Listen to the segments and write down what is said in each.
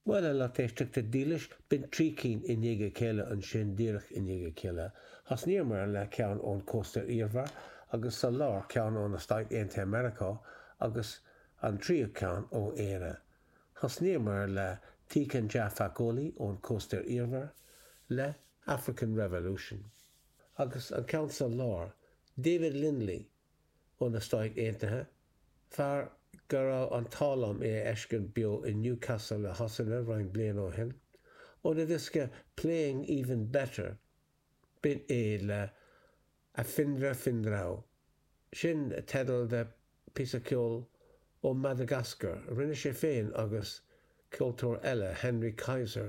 Bhuel, a lucht éisteachta dílis, b'in trí cinn i ndiaidh a chéile, ansin, díreach i ndiaidh a chéile, thosnaíomar le ceann ón cósta iarthar, agus sa lár, ceann ó na Stáit Aontaithe Meiriceá, agus an tríú ceann ó Éire. Thosnaíomar le Tiken Jah Fakoly, ón cósta iarthar, le African Revolution, agus an ceann sa lár, David Lindley, ó na Stáit Aontaithe, fear go raibh an t-ádh liom é a fheiscint beo i Newcastle i Sasana roinnt bliana ó shin, óna dhiosca Playing Even Better, b'in é le Afindrafindrao, sin teideal de phíosa ceoil ó Mhadagascar a rinne sé féin agus ceoltóir eile, Henry Kaiser,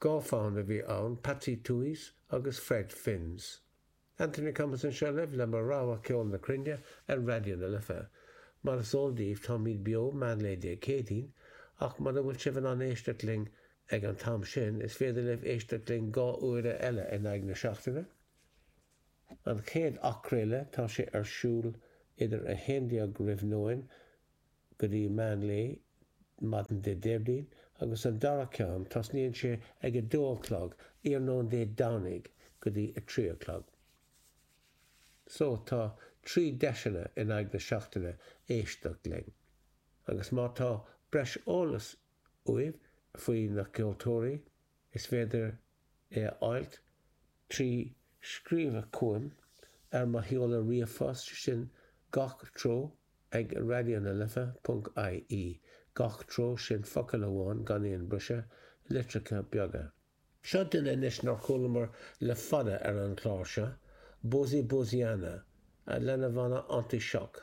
Dhá fhonn a bhí ann, Patsy Touhey's agus Fred Finn's. Anthony Thomas anseo libh le mo rogha cheol na cruinne ar Raidió na Life. Mar is eol daoibh táimid beo meánlae Dé Céadaoin, ach mura bhfuil sibh in ann éisteacht linn ag an t-am sin, is féidir libh éisteacht linn dhá uaire eile in aghaidh na seachtaine. An chéad athchraoladh, tá sé ar siúl idir 11:00 roimh nóin go dtí meán lae maidin Dé Déardaoin agus an dara ceann tosnaíonn sé ag a dó a chlog iarnóin Dé Domhnaigh go dtí a trí a chlog. So tá trí deiseanna in aghaidh na seachtaine éisteacht linn agus má tá breis eolas uaibh faoi na ceoltóirí, is féidir é a fháilt trí scríobhadh chugam ar mo sheoladh ríomhphost, sin Gach treo ag raidionalife ponc ie. Gach treo, sin focal amháin, gan aon briseadh, litreacha beaga. Seo duine anois nár chualamar le fada ar an chlár seo, Bozi Boziana, lena bhanna Anti-Choc.